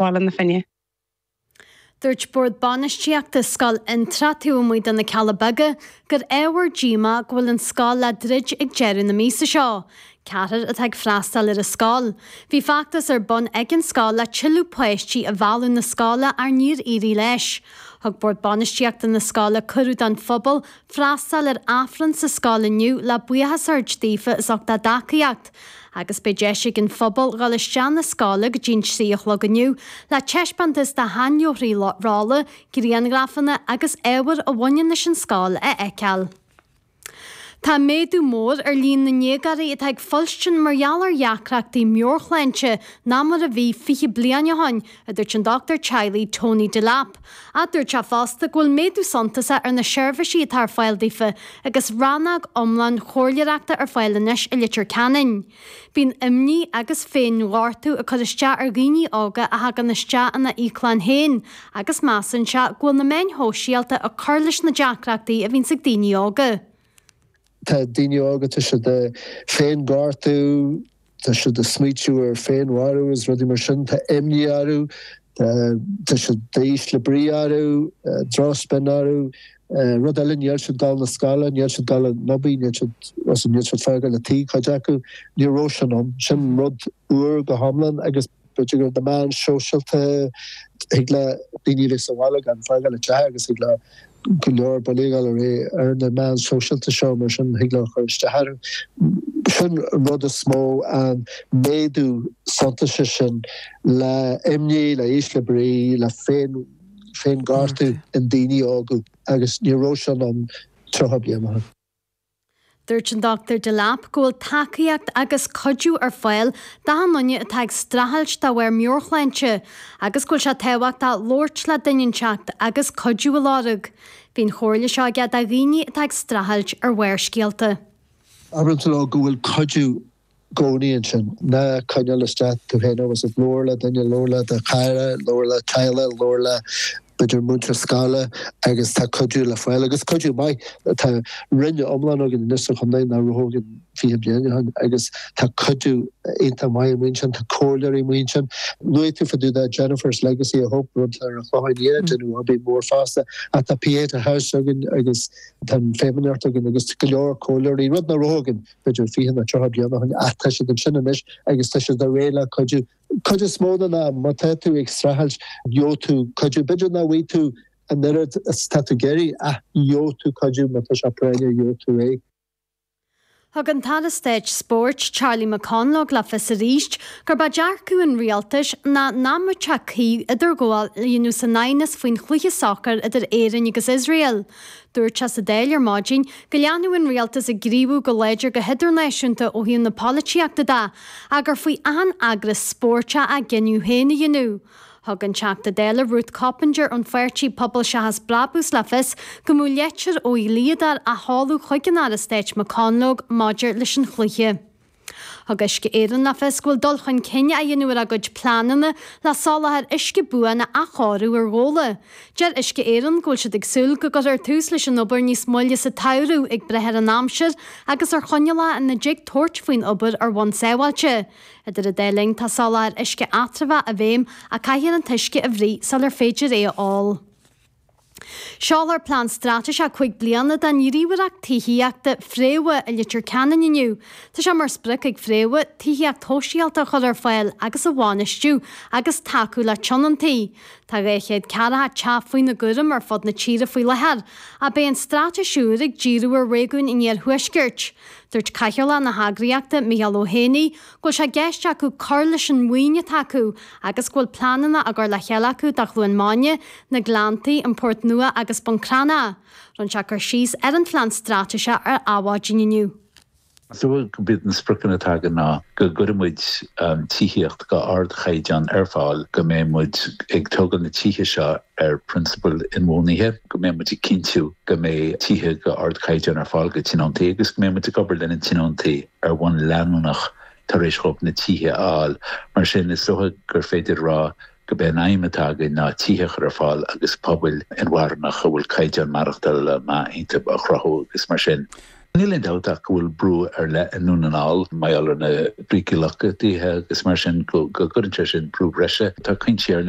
Bhaile na Finne. Dúirt Bord Bainistíochta Scoil Fhionntrá taobh amuigh do na Cealla Beaga gur ábhar díomá é go bhfuil an scoil le druid ag deireadh na míosa seo. Ceathrar atá ag freastáil ar an scoil. Bhí feachtas ar bun ag an scoil le tuilleadh páistí a mhealladh 'na scoile ach níor éirigh leis. Thug Bord Bainistíochta na scoile cuireadh don phobal freastal ar Aifreann sa scoil inniu le buíochas a thabhairt daofa as ucht a dtacaíocht agus beidh deis ag an phobal dhul isteach 'na scoile go dtí'n trí a chlog inniu le teispeántas de sheanleabharthaí rolla, grianghrafanna agus ábhar a bhaineann leis an scoil a fheiceáil. Tá méadú mór ar líon na ndéagáirí atá ag fuilstin mar gheall ar dheacrachtaí meabhairshláinte ná mar a bhí fiche bliain ó shin, a dúirt an dochtúir teaghlaigh Tony Delap, ach dúirt sé fosta go bhfuil méadú suntasach ar na seirbhísí atá ar fáil daofa agus rannóg iomlán comhairleoireachta ar fáil anois i Leitir Ceanainn. Bíonn imní agus féin-ghortú ag cur isteach ar dhaoine óga a thagann isteach ina íoclann féin agus measann sé go bhfuil na meáin shóisialta ag cur leis na deacrachtaí a bhíos ag daoine óga. Tá daoine óga, tá siad ag féinghortú, tá siad ag smaoitiú ar féinmharú agus rudaí mar sin, tá imní orthu, tá siad in ísle brí orthu, drochspion orthu, rud eile níl siad ag dul 'na scoile, níl siad ag dul 'na hoibre, níl siad, as sin níl siad ag fágáil an teach cuid acu, ní raibh sin ann. Sin rud úr go hiomlán agus. B'fhéidir gur na meáin shóisialta thig le daoine a bheith sa bhaile gan fágáil an teach acu agus thig leo go leor bulaíocht a fháil ar na meáin shóisialta seo mar sin thig leo cur isteach orthu. Sin an rud is mó, an méadú suntasach sin le imní, le ísle brí, le féin féin ghortú in daoine óga agus ní raibh sin ann 30 bliain ó shin. Dúirt an Dr Delap go bhfuil tacaíocht agus cuidiú ar fáil d'achan duine atá ag streachailt de bharr meabhairshláinte agus go bhfuil sé tábhachtach labhairt le duine inteacht agus cuidiú a lorg. Bhí an chomhairle seo aige do dhaoine atá ag streachailt ar Barrscéalta. Abraim leo go bhfuil cuidiú gcónaí ansin. Ná coinneáil istigh tú féin é agus labhair le duine, labhair le do chara, labhair le do theaghlach, labhair le b'fhéidir múinteoir scoile agus tá cuidiú le fáil agus cuidiú maith. Tá roinn iomlán againn anois sa chontae nach raibh againn fiche bliain ó shin agus tá cuidiú iontach maith amuigh ansin, tá comhairleoirí amuigh ansin. Luaigh tú fá dtaobh de Gemma's Legacy of Hope, atá ar an Chlochán Liath, déanamh obair mhór fosta ach tá Pieta House againn agus tá an Feidhmeannacht againn agus go leor comhairleoirí, rud nach raibh againn. b'fhéidir 20 nó 30 bliain ó shin ach tá siad ansin anois agus tá siad réidh le cuidiú. Cuid is mó den am, má tá tú ag streachailt, gheobhaidh tú cuidiú. B'fhéidir nach bhfaighidh tú an oiread is atá tú ag iarraidh ach gheobhaidh tú cuidiú, má tá sé práinneach, gheobhaidh tú é. Thug an tAire Stáit Spóirt, Charlie McConalogue le fios arís gurb é dearcadh an Rialtais ná nach mbeadh sé cuí idirghabháil a dhéanamh san aighneas faoin chluiche sacair idir Éirinn agus Iosrael. Dúirt sé sa Dáil ar maidin go leanfadh an Rialtas ag gníomhú go láidir go hidirnáisiúnta ó thaobh na polaitíochta de ach gur faoi achan eagras spóirt a gcinneadh féin a dhéanamh. Thug an Teachta Dála Ruth Coppinger ón pháirtí Pobal Seachas Brabús le fios go mbeadh litir ó dhlíodóir á sheoladh chuig an Aire Stáit McConalogue maidir leis an chluiche. Thug Uisce Éireann le fios go bhfuil dul chun cinn á dhéanamh ar a gcuid pleananna le soláthar uisce buan a athchóiriú ar Ghabhla. Deir Uisce Éireann go bhfuil siad ag súil go gcuirfear tús leis an obair níos moille sa tsamhradh ag brath ar an aimsir agus ar choinníollacha ina dtig tabhairt faoin obair ar bhonn sábháilte. Idir an dá linn, tá soláthar uisce eatramhach i bhfeidhm ach caithfear an t-uisce a bhruith sular féidir é a ól. Seolfar Plean Straitéiseach cúig bliana don ghníomhaireacht tithíochta Fréamha i Leitir Ceanainn inniu. Tá sé mar sprioc ag Fréamha, tithíocht shóisialta a chur ar fáil agus a bhainistiú agus tacú le tionóntaí. Tá 240 teach faoina gcúram ar fud na tíre faoi láthair, ach beidh an straitéis úr ag díriú ar réigiún an iarthuaiscirt. Dúirt Cathaoirleach na heagraíochta, Micheál Ó hÉanaí, go bhfuil sé i gceist acu cur leis an mhaoin atá acu agus go bhfuil pleananna á gcur le chéile acu do Chluain Maine, Na Gleanntaí, An Port Nua agus Bun Cranncha. Rinne sé cur síos ar an phlean straitéise ar Adhmhaidin inniu. Is dócha gurb iad na spriocanna atá againn ná go gcuirfidh muid tithíocht d'ardchaighdeán ar fáil, go mbeidh muid ag tógáil na tithe seo ar phrionsabail inbhuanaithe, go mbeidh muid ag cinntiú go mbeidh tithe d'ardchaighdeán ar fáil do thionóntaí agus go mbeidh muid ag obair le na tionóntaí. ar bhonn leanúnach tar éis dhóibh na tithe a fháil. Mar sin, is dócha gur féidir a rá gurb é an aidhm atá againn ná tithe a chur ar fáil agus pobail inmharthanach a bhfuil caighdeán maireachtála maith iontu a chruthú agus mar sin níl aon dabht ach go bhfuil brú ar leith i nDún na nGall mar gheall ar na brící lochtaithe agus mar sin go gcuireann sé sin brú breise. Tá cúinsí ar leith.